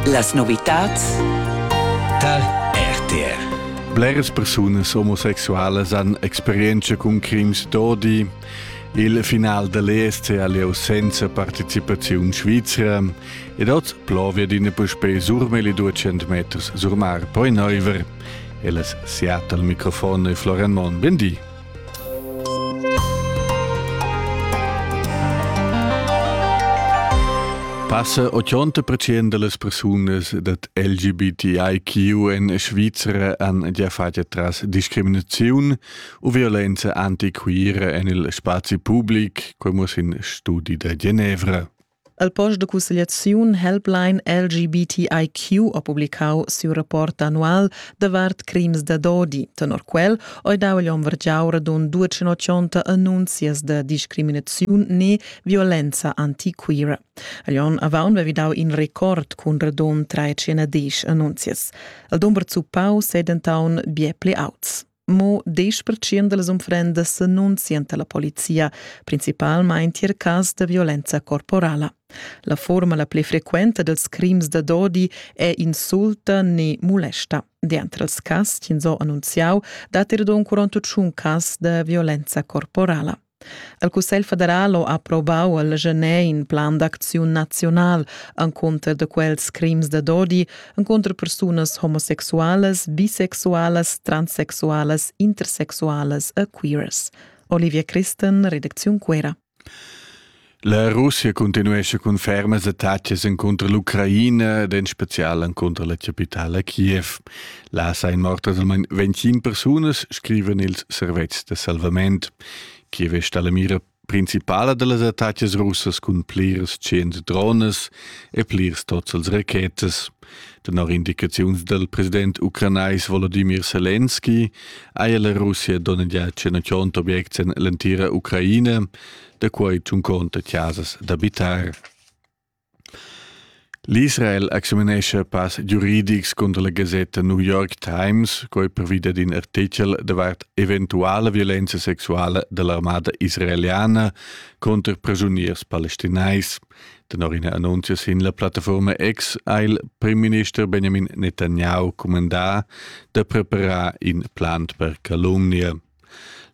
Las novitads tar RTR. Bleras persunas omosexualas han experienza cun crims d'odi. Il final dall'ESC ha lieu senza participaziun svizra ed oz plovia d'ina puspè surmeli 200 meters sur mar, poi Neuver. Ellas siat al microfon e Florian Mon. Bendi. Passa 80% delle persunas dat LGBTIQ in Svizzera han già fatto tras discriminazione u violenza antiqueira en il spazi pubblic, come in studi da Genevra. El post de cussegliaziun Helpline LGBTIQ ha publicau siu rapport annual davart crims da dodi. Tenor quel ei dau igl onn vargiau radund 280 annunzias da discriminaziun ne violenza antiquira. Agl onn avaun vevi dau in record cun radund 310 annunzias. El dumber zuppau sedentaun bie pli auts. Mo 10% dals unfrendas s'annunzian alla polizia, principalmein tier cas da violenza corporala. La forma la pli frequenta dels crims da dodi è insulta ne molesta. Dentro els cas, ins ho annunziau, dat er d'un 41 cas da violenza corporala. El Cussegl federal ha approvau al Genet in plan d'acziun naziunal encunter de quels crims da dodi encunter persunas homosexualas, bisexualas, transsexualas, intersexualas e queers. Olivia Christen, Redaktion Quera. La Russia continuescha cun fermas attacas encunter l'Ucraina ed en special encunter la capitala Kiev. Là sain mortas almain 25 persunas, scrivan ils servetschs da salvament. Kiev è stata la mira principala da las attacas russas cun plirs cents drones e plirs tots als rachetas. Tenor indicaziuns dal president ucranais Volodymyr Zelensky haja la Russia donnegià 100 objects en l'entira Ucraina. da quei tschunconta chasas d'abitar. L'Israel examinescha pass giuridics contra la gasetta New York Times, quei previda d'in artichel davart eventuale violenza sexuale dell'armada israeliana contro prigioniers palestinais. Tenor ina annunzia sin la plattaforma X ha il premierminister Benjamin Netanyahu comandà da preparar in plan per calunnia.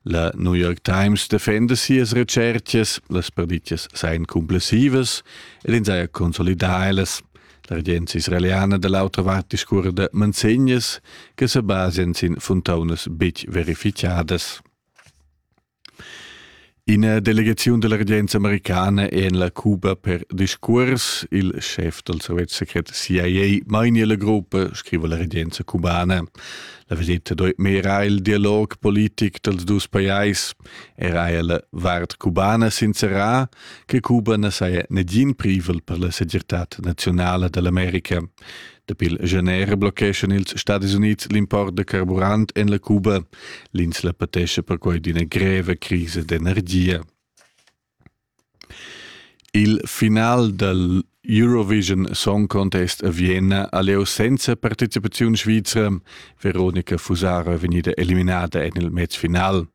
La New York Times defenda sias retschertgas, las perditgas sain cumplessivas ed ins haja consolidà ellas. La regenza israeliana da l'autra vart discurra da manzegnas che sa basian sin funtaunas betg verificadas. Ina delegaziun della regenza americana è en la Cuba per discurs. Il chef del sovet secret CIA mainia la gruppa, scrive la regenza cubana. La visita dort mehr il dialog politik dels dus pajais. Era la vart cubana sincera che Cuba na saja negin privel per la segirtad nazionale dell'America. Dapi il gener blocheschan ils Stadis Unids l'import da carburant en la Cuba. L'ins la patescha perquai d'ina greva crisa d'energia. Il final dal Eurovision Song Contest a Vienna ha lieu senza participaziun svizra. Veronica Fusaro è vegnida eliminada en il match final.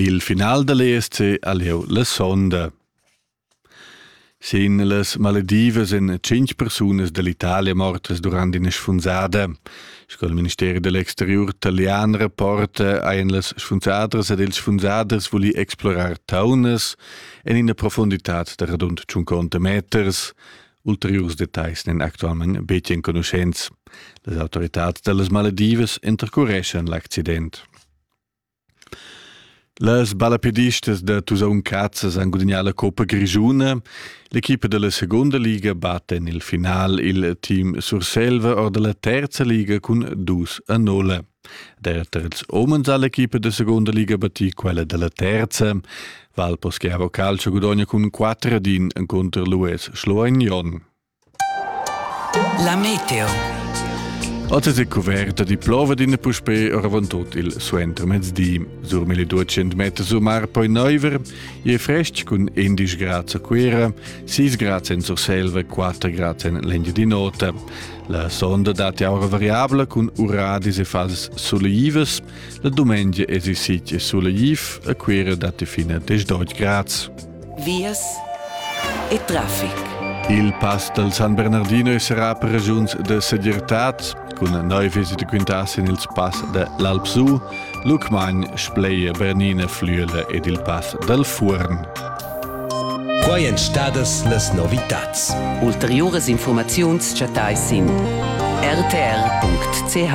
Il final da l'ESC ha lieu la sonda. Sin las maledivas èn tschintg persunas dall'Italia mortas durant ina sfunzada. Sco il ministeri dell'exteriur italian rapporta, ein las sfunzadras ed ils sfunzaders vuli explorar taunas en ina profunditad da radund 50 meters. Ulteriurs detagls n'en actualmente betg enconuschents. Las autoritad dallas maledivas intercureschan l'accident. Las ballapedistas da Tusaun Cazzas han gudagnà la coppa grischuna. L'equipa da la segunda liga batta en il final il team Surselva or da la terza liga cun dus a nulla. Derter ils omens ha l'equipa da segunda liga battì quella da la terza. Valpo Schiavo Calcio gudogna cun 4 ad 1 contro l'US Schloignon. La meteo. Oz è coverta di plova d'in puspè oravantut il suentermezdi. Sur 1200 meter su mar poi neuver, e frestg cun 11 grad a Cuera, 6 grad en Surselva, 4 grad en l'Engiadin'Ota. La sonda dati aura variabla cun uradis e fases soleivas. La dumengia es i sitg e soleiv, a Cuera dati fina 10 grad. vias e traffic. Il pass dal San Bernardino sarà per regiuns de segirtad, cun neu visite quintas in ils pass de l'Alpsu, Lucmagn, Spleie, Bernine, Flüele ed il pass dal Fuorn. Quai èn stadas las novitads. Ulteriuras informaziuns chattais sin rtr.ch.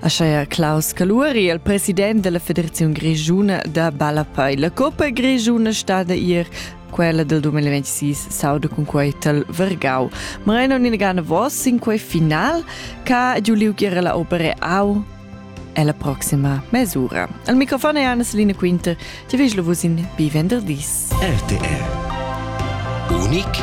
Ascheia Klaus Caluori, il president della Federazione Grigiuna da Ballapei. La Coppa Grigiuna stada ir quella del 2026 sauda con quei tal Vergau. Ma non inegana vos in quei final ca Giuliu Gira la opere au e la prossima mesura. Al microfon è Anna-Selina Quinter, ti veglo vus in bivenderdis. RTR Unik